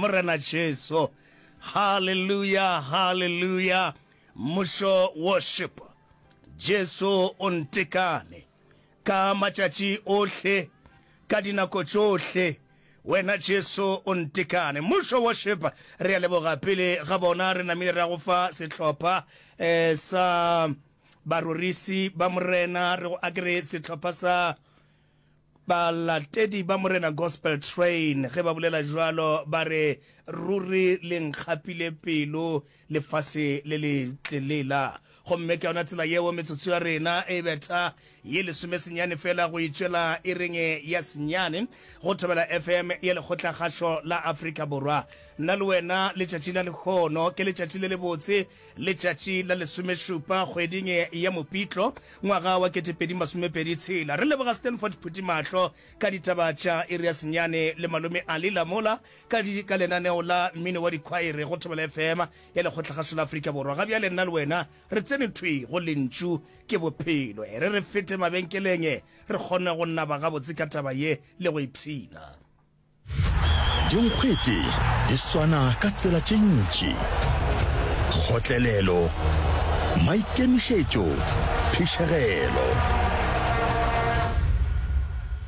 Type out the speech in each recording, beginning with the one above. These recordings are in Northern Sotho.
morena jesu halleluja halleluja mmušo worship jesu o ntekane ka matšatši ohle ka dinako tšohle wena jesu o ntekane mmušo worship re a leboga pele ga bona re namile ra go fa sehlopha eh, sa Barorisi ba Morena, re go akere sehlopha sa Balatedi ba Morena Gospel Train, ge ba bolela bjalo, ba re, Ruri le nkgapile pelo, lefase le le tlelela. Gomme ke yona tsela yeo metsotso ya rena e betha ye lesome senyane fela go itšwela ireng ya senyane, go Thobela FM ya Lekgotlakgašo la Afrika Borwa. Nna le wena, letšatši la lehono ke letšatši le lebotse, Letšatši la lesomešupa kgweding ya Mopitlo ngwaga wa ketepedi masomepedi tshela, re leboga Stanford Phuthimahlo ka ditaba tša Erias Nyane le Malome Ali Lamola ka di ka lenaneo la Mmino wa Dikhwaere go Thobela FM ya Lekgotlakgašo la Afrika Borwa. Ga bjale nna le wena re tsene thwi go Lentšu ke Bophelo. E re re fete mabenkeleng re kgone go naba gabotse ka taba ye le go ipshina. Dinkgwete di swana ka tsela tše ntši, kgotlelelo, maikemišetšo, phišegelo.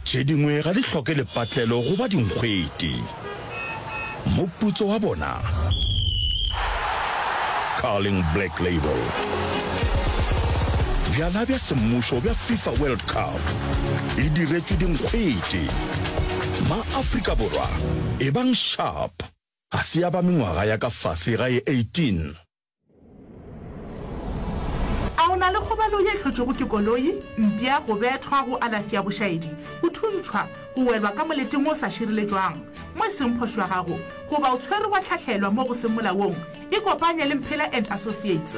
Tše dingwe ga di hloke lepatlelo go ba dinkgwete. Moputso wa bona, Carling Black Label. Bjala bja semmušo bja FIFA World Cup. e diretšwe dinkgwete. Ma-Afrika Borwa, ebang sharp, ga se ya ba mengwaga ya ka fase ga ye 18. A o na le kgobalo ye hlotšwego ke koloi, mpša, go bethwa, go alafi ya bošaedi, go thuntšhwa, go welwa ka moleteng o sa šireletšwang mo e seng phošo ya gago, goba o tshwerwe wa hlahlelwa mo go seng molaong? Ikopanye le Mphela and Associates.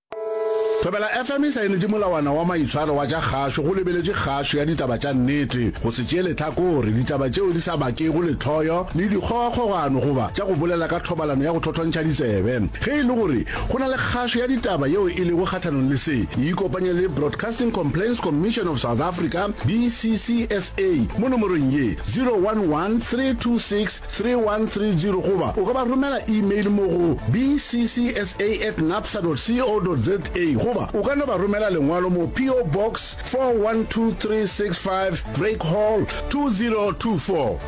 Thobela FM e saenetše molawana wa maitshwaro wa tša kgašo go lebeletše kgašo ya ditaba tša nnete, go se tšeele tlhakore, ditaba tšeo di sa bakego lehloyo le dikgogakgogano goba tša go bolela ka thobalano ya go thothontšha ditsebe. Ge e le gore go na le kgašo ya ditaba yeo e lego kgahlanong le se, e ikopanye le Broadcasting Complaints Commission of South Africa, BCCSA, mo nomorong ye, 011 326 3130 goba o ka ba romela email mo go bccsa at napsa co za goba o ka no ba romela lengwalo mo PO Box 412365 Drake Hall 2024.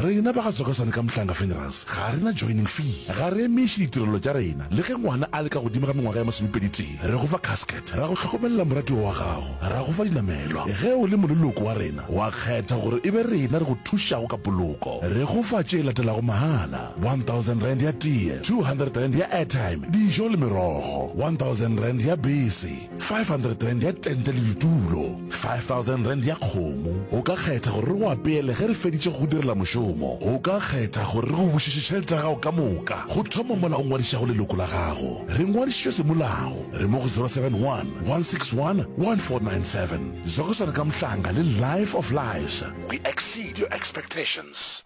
Rena ba ga Tsokasane ka Mhlanga Funerals ga re na joining fee. Ga re emiše ditirelo tša rena le ge ngwana a le ka godimo ga mengwaga ya masomepeditee. Re go fa casket. Ra go hlokomelela moratiwa wa gago, ra go fa dinamelwa. Ge o le moleloko wa rena, wa kgetha gore e be rena re go thušago ka poloko. Re go fa tše latelago mahala, R1000 ya tee, R200 ya airtime, dijo le merogo, R1000 ya bese, R500 ya tente le ditulo. 5000 rand ya kgomo. O ka kgetha gore re go apeele ge re feditše go go direla mošomo. O ka kgetha gore re go bušetše tšhelete ya gago ka moka. Go thoma mola o ngwadišago leloko la gago, re ngwadišitšwe semolao. Re mo go 071 161 1497. Zokoswana ka Mhlanga le Life of Lives. We exceed your expectations.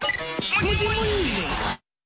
Modimo o ile.